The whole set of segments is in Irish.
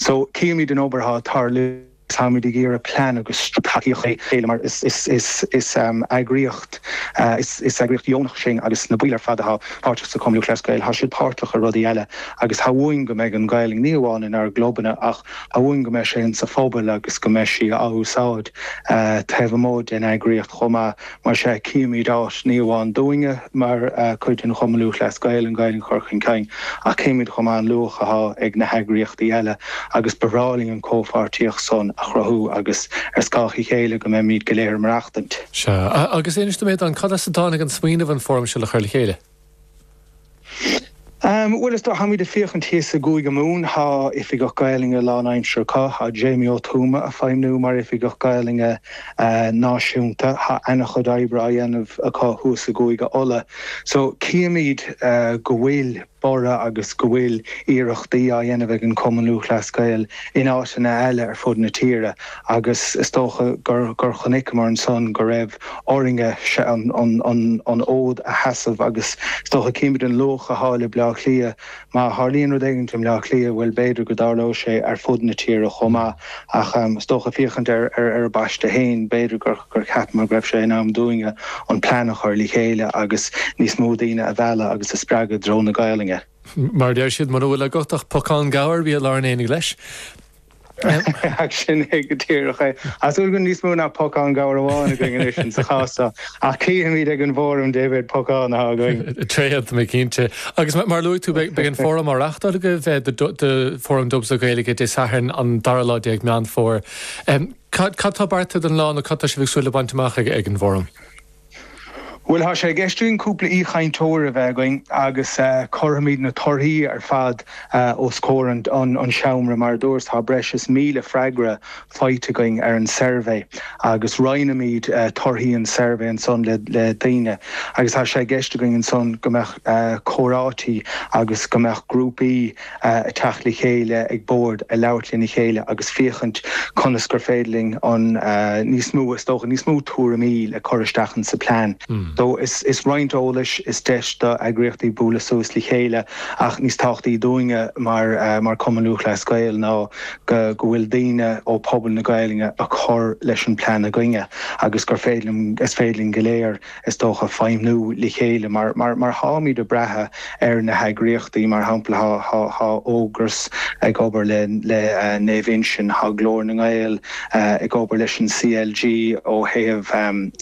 So, cífimid an obair atá ag tarlú agus táimid ag iarraidh plean agus tacaíocht a chur le chéile mar is eagraíocht dheonach sinn agus na baill ar fad atá páirteach sa Chumann Lúthchleas Gael, tá siad páirteach i rudaí eile agus tá uainn go mbeidh an Ghaelainn ní amháin inár gclubanna ach tá uainn go mbeidh sí insa phobal agus go mbeidh sí á úsáid taobh amuigh den eagraíocht chomh maith. Mar sea, chífimíd áit, ní amháin dúinne mar chuid den Chumann Lúthchleas Gael, an Ghaelainn a chur chun cinn, ach chífimíd chomh maith an luach athá ag na heagraíochtaí eile agus ba bhreá linn an chomhpháirtíocht san a chruthú agus ar scáth a chéile go mbeimíd go léir ag maireachtaint. Sea, agus inis dom Aodán, cad as a dtáinig an smaoineamh an fóram seo a chur le chéile? Bhuel, is dóigh, táimíd ag fiachaint thíos i gCúige Mumhan, tá Oifigeach Gaelainne lán aimsire acu, tá Jamie Ó Tuama a feidhmniú mar Oifigeach Gaelainne Náisiúnta, tá ana chuid oibre á dhéanamh acu thuas i gCúige Uladh. So, cífimíd go bhfuil borradh agus go bhfuil iarrachtaí á dhéanamh ag an Cumann Lúthchleas Gael in áiteanna eile ar fud na tíre. agus is dócha gur chonaiceamar ansan go raibh orainn-ne an fód a sheasamh agus is dócha címid an luach athá le Bleá Cliath. Má tharlaíonn rud éigint i mBleá Cliath, bhuel, b'fhéidir go dtarlóidh sé ar fud na tíre chomh maith ach is dócha fiachaint ar ár bpaiste fhéin, b'fhéidir gur cheapamar go raibh sé in am dúinn-ne an plean a chur le chéile agus níos mó daoine a mhealladh agus a spreagadh i dtreo na Gaolainne. Mar a deir siad, muna bhfuil agat ach pocán gabhair, bí i lár an aonaigh leis. Ach sin é go díreach é. Tá súil go bhfuil níos mó ná pocán gabhair amháin againn anois insa chás seo, ach cífimid ag an bhfóram dé mhéad pocán atá againn. Tréad, cinnte. Agus mar a luaigh tú, beidh an fóram á reáchtáil agaibh, do Fóram Dubs le Gaeilge, Dé Sathairn an 12 lá Meán Fómhair. Cad tá beartaithe don lá nó cad tá sibh ag súil le baint amach ag an bhfóram? Bhuel, tá sé i gceist againn cúpla aoichainteoir a bheith againn agus cuirfimid na torthaí ar fad os comhair an seomra. Mar a dúras, tá breis is míle freagra faighte againn ar an tsuirbhé agus roinnfimid torthaí an tsuirbhé ansan le daoine agus tá sé i gceist againn ansan go mbeadh comhráite agus go mbeadh grúpaí. a teacht le chéile ag bord, a labhairt lena chéile agus fiachaint conas gur féidir linn an níos mó, is dócha, níos mó tuairimí le cur isteach in sa plean. So is roinnt eolais, is deis do eagraíochtaí bualadh suas le chéile ach níos tábhachtaí dúinne mar mar Cumann Lúthchleas Gael ná go go bhfuil daoine ó pobal na Gaeilge a cur leis an plean againne agus gur féidir, is féidir linn go léir, is dócha, feidhmniú le chéile mar, mar táimid ag brath ar na heagraíochtaí. Mar shampla, tá Ógras ag obair le Naomh Uinseann, tá Glór na nGael ag obair leis an CLG ó thaobh,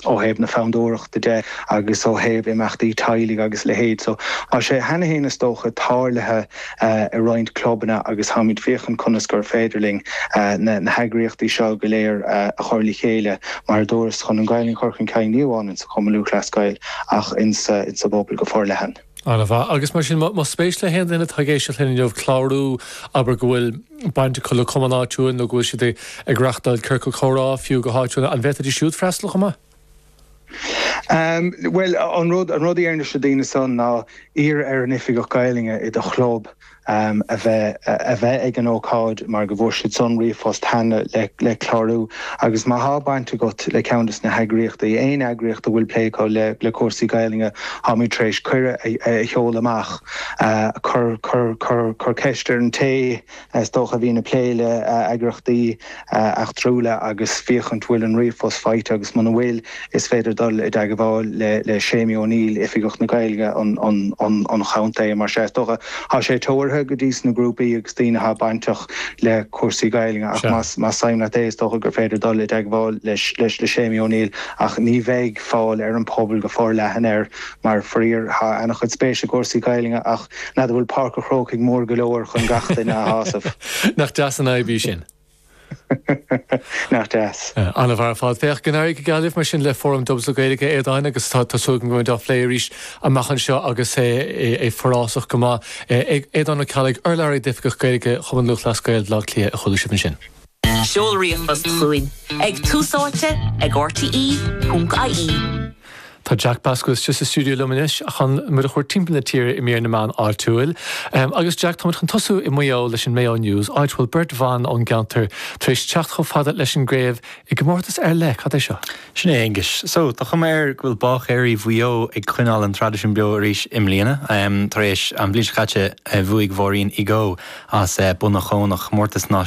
ó thaobh na fondúireachta de agus ó thaobh imeachtaí teaghlaigh agus a leithéid. So tá sé cheana féin, is dócha, tarlaithe. i roinnt clubanna agus tháimid féachaint conas gur féidir linn na heagraíochtaí seo go léir a chur le chéile, mar a dúras, chun an Ghaelainn chur chun cinn ní amháin insa Chumann Lúthchleas Gael ach insa bpobal go forleathan. An-mhaith. Agus mar sin, más spéis le haon duine atá ag éisteacht linn inniu clárú, abair go bhfuil baint acu le cumann áitiúil nó go bhfuil siad ag reachtáil ciorcal comhrá fiú go háitiúil, an bhféadfaidís siúd freastal chomh maith? Bhuel, an rud an rud a déarfainn leis na daoine san ná iarraidh ar an oifigeach Gaelainne i do chlub a bheith a bheith ag an ócáid mar go bhfuair siad san ríomhphost cheana le le clárú agus má thá baint agat le ceann des na heagraíochtaí, aon eagraíocht a bhfuil plé acu le le cúrsaí Gaelainne, tháimid tar éis cuireadh a a sheoladh amach. Cuir cuir cuir cuir ceist ar an té Is dócha a bhíonn ag plé le eagraíochtaí eachtrúla agus féachaint bhfuil an ríomhphost faighte agus muna bhfuil, is féidir dul i dteagmháil le Séimí Ó Néill, Oifigeach na Gaelainne an chontae. Mar sea, is dócha thá sé teoraithe go dtí sna grúpaí agus daoine athá bainteach le cúrsaí Gaelainne ach más suim leat é, is dócha gur féidir dul i dteagmháil leis le Séimí Ó Néill ach ní bheidh fáil ar an bpobal go forleathan air mar, faraor, thá an-chuid spéis i gcúrsaí Gaelainne ach. N'fheadar bhfuil Páirc an Chrócaigh mór go leor chun gach duine a shásamh. Nach deas an fhadhb í sin? Nach deas. An-mhaith ar fad. Féach, go n-éirí go geal libh mar sin le Fóram Dubs le Gaeilge, a Aodáin, agus tá súil agam go mbeimid á phlé arís amach anseo agus é forásach go maith. Aodán Ó Ceallaigh, Urlabhraí d'Oifigeach Gaeilge Chumann Lúthchleas Gael Bhaile Átha Cliath, a chuala sibh ansin. Seol ríomhphost chugainn ag tús áite ag rte.ie. Tá Jack Pasc istigh sa stiúideo liom anois chun muid a thabhairt timpeall na tíre i mír na meán áitiúil. Agus Jack, táimid chun tosú i Maigh Eo leis an Mayo News, áit a bhfuil beirt bhan ón gceantar tar éis teacht chomh fada leis an gcraobh i gcomórtas ar leith, cad é seo? Sin é, Aengus. So, tá cuma air go bhfuil báicéirí Mhaigh Eo ag coinneáil an traidisiún beo arís i mbliana. Tar éis an bhliain seo caite bhuaigh Maureen Igoe as Bonniconlon comórtas náisiúnta.